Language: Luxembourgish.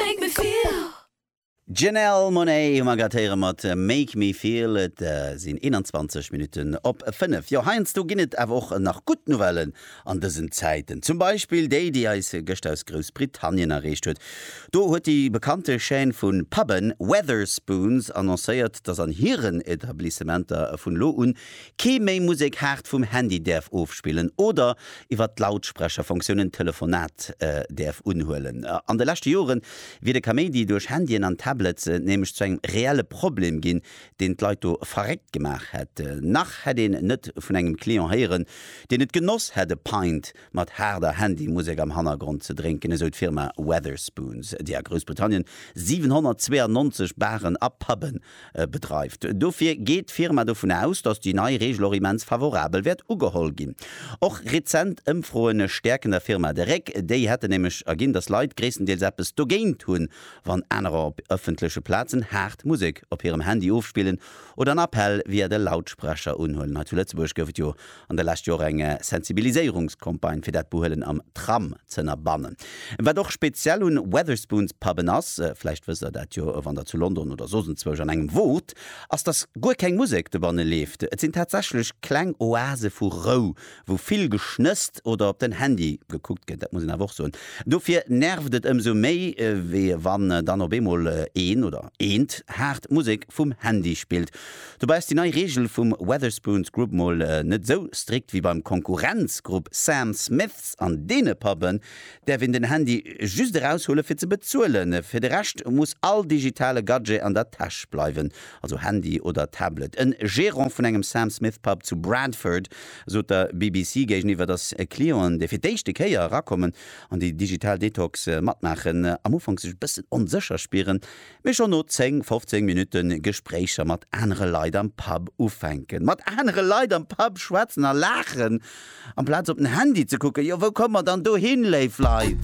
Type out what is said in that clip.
Make me feel. D'Janelle Monáe hu mer grad héiere mat Make me feel. Et sinn 21 Minutten op 5. Jo, heiansdo ginn et awer och nach gutt Nouvellen an dësen Zäiten. Zum Beispill déi, déi eis gëscht aus Groussbritannien erreecht huet. Do huet déi bekannte Chaîne vu Pubben Wetherspoons annoncéiert, dass an hiren Etablissementer vun elo un Kee méi Musek haart vum Handy däerf ofspillen oder iwwer d'Lautsprecherfonctioun en Telefonat däerf unhuelen. An de leschte Jore wier de Kaméidi duerch Handyen an Tablets nämlech zu engem reelle Problem ginn, deen d'Leit do verréckt gemaach hätt. Nach hätt een net vun engem Client héieren, deen et genoss hätt e Pint mat haarder Handymusek am Hannergrond ze drénken, esou d'Firma Wetherspoons, déi a Groussbritannien 792 Baren a Puben bedreift. Dofir geet d'Firma dovun aus, datt déi nei Reegel och immens favorabel wäert ugeholl ginn. Och rezent Ëmfroen stäerken der Firma de Réck. Déi hätten nämlech erginn, datt Leit gréisstendeels eppes dogéint hunn, wann anerer op ëffentleche Plazen haart Musek op hirem Handy ofspillen oder en Appell via de Lautsprecher unhuelen. Hei zu Lëtzebuerg gouf et jo an de lescht Jor eng Sensibiliséierungscampagne fir dat Behuelen am Tram z'ënnerbannen. Wat och speziell un Wetherspoons Puben ass, vläicht wësst der dat jo wann der zu London oder soss enzwousch an engem wot, ass dass guer keng Musek dobannen leeft. Et sinn tatsächlech kleng Oase vu Rou, wou vill geschnësst oder op den Handy gekuckt gëtt, dat muss een awer och soen. Dofir nervt et ëmsou méi wéi wann dann op eemol een oder eent haart Musek vum Handy spillt. Dobäi ass déi nei Reegel vum Wetherspoons Group mol net esou strikt ewéi beim Konkurrenzgrupp Sam Smiths. An deene Puben däerf een den Handy just eraushuelen, fir ze bezuelen. Fir de Rescht muss all digitale Gadget an der Täsch bleiwen, also Handy oder Tablet. E Gerant vun engem Sam Smith Pub zu Bradford sot der BBC géigeniwwer, datt Clienten, déi fir d'éischte Kéier erakommen an déi digital Detox matmaachen, am Ufank sech e bëssen onsécher spieren, Mee schonn no 10, 15 Minutte Gespréicher mat anere Leit am Pub ufänken. Mat anere Leit am Pub schwätzen a laachen, amplaz op den Handy ze kucken, jo wou komme mer dann dohin, léif Leit?